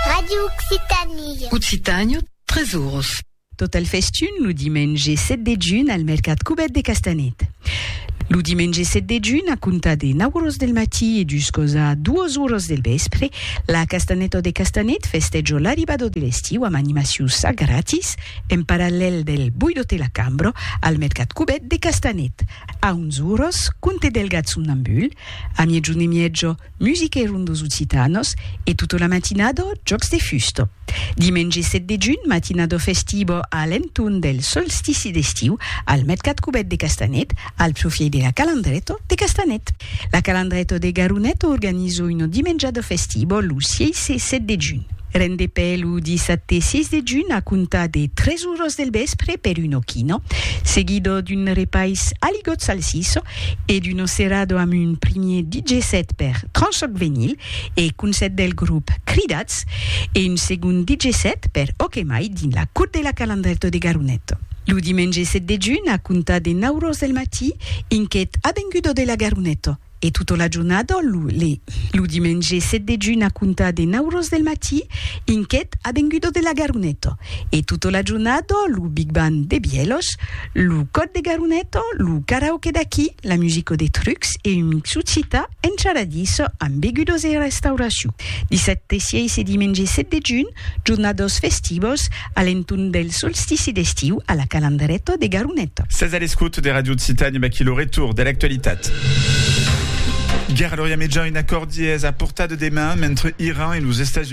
Radio Occitanie. Occitània, tres oros. Tot el festun lo dimenge 7 de junh al mercat Cubèt de Castanet. Lo dimenge 7 de junh, a comptar de 9 oros del matí e juscos a 2 oros del vèspre, la Castanèta de Castanet festèjo l'arribada de l'estiu amb animacions a gratis en parallèl del Boidote la Cambra al mercat Cubèt de Castanet. A 11 oros, Conte Delgat somnambul, a miègjun e mièja, Musiquèron dos occitanos e tota la matinada jòcs de fusta. Dimenge 7 de junh, matinada festiva a l'entorn del solstici d'estiu al mercat cubèt de Castanet, al profièit de la Calandreta de Castanet. La Calandreta de Garonet organiza una dimenjada festiva lo 6 e 7 de junh. Rendepè lo dissabte 6 de junh a comptar de 3 oras del vèspre per una quina, seguida d'un repais a ligòt salsissa, e d'Uno Cerrado amb un primier DJ set per Tranchoc Venyl e Concèrt del grop Cridats e un segond DJ set per Ok Mai dins la Cour de la Calandrèto de Garonet. Lo dimenge 7 de junh a comptar de 9 ros del matí inquet avengudo de la Garonet e tota la jornada lo. Lo dimenge 7 de junh a comptar de 9 ros del matí inquet avengudo de la Garonet e tota la jornada lo Big Band de Bièlhos, Lo còd de Garuneto, lo karaoke d'aquí, la musico de trucs e un mixucita encharadís amb begudos e restauracion. Dissabte 6 e dimenge 7 de junh, jornados festivos a l'entorn del solstici d'estiu a la Calandreto de Garuneto. Sètz a l'escòut de Radio Occitània amb aquí lo retorn de l'actualitat. Guèrra a l'Orient Mejan, un acòrdi es a portar de deman mentre Iran e los Estats Units.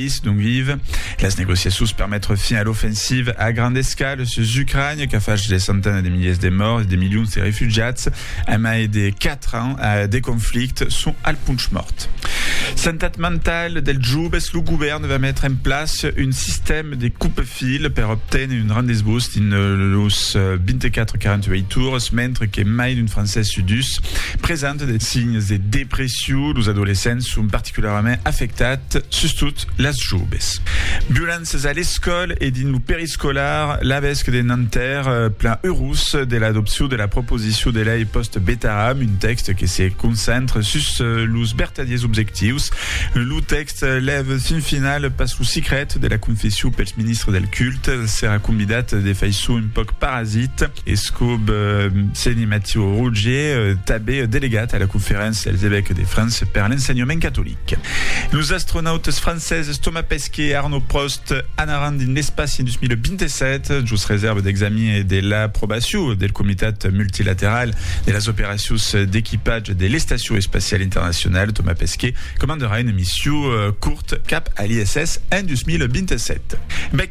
país d'ont vive. Las negociacions per metre fin a l'ofensiva a granda escala sus Ucrània qu'a fach de centenas de miliers de mòrts e de milions de refugiats a mai de 4 ans de conflicte son al ponch mòrt. Santat mentala dels joves, lo govèrn va metre en plaça un sistèma de coupe-fil per obténer un rendez-vous dins los 24-48 ores, mentre que mai d'un francés sud 2 presenta de signes de depression. Los adolescents son particularament particularament afectat, sustot las joves. Violenças a l'escòl e dins lo periscolar, l'avesc de Nanterre plan eurós de l'adopcion de la proposicion de lei post-Betaram, un tèxt que se concentre sus los vertadiers objectius. Lo tèxt lèv fin final pas lo sicret de la confession pels ministres del culte, s'èra convidat de faiçon un pauc parasit. Escub Seni Mathieu Rougier, tanbe delegat a la Conferéncia dels Evèques de França per l'Ensenhament Catolic. Los astronautes francèses Thomas Pesquet e Arnaud Prost anaràn dins l'espaci en 2027, jos resèrva d'examin e de l'aprobacion del Comitat Multilateral de las Operacions d'Equipatge de l'Estacion Espaciala Internacionala. Thomas Pesquet comandarà una mission curta cap a l'ISS en 2027.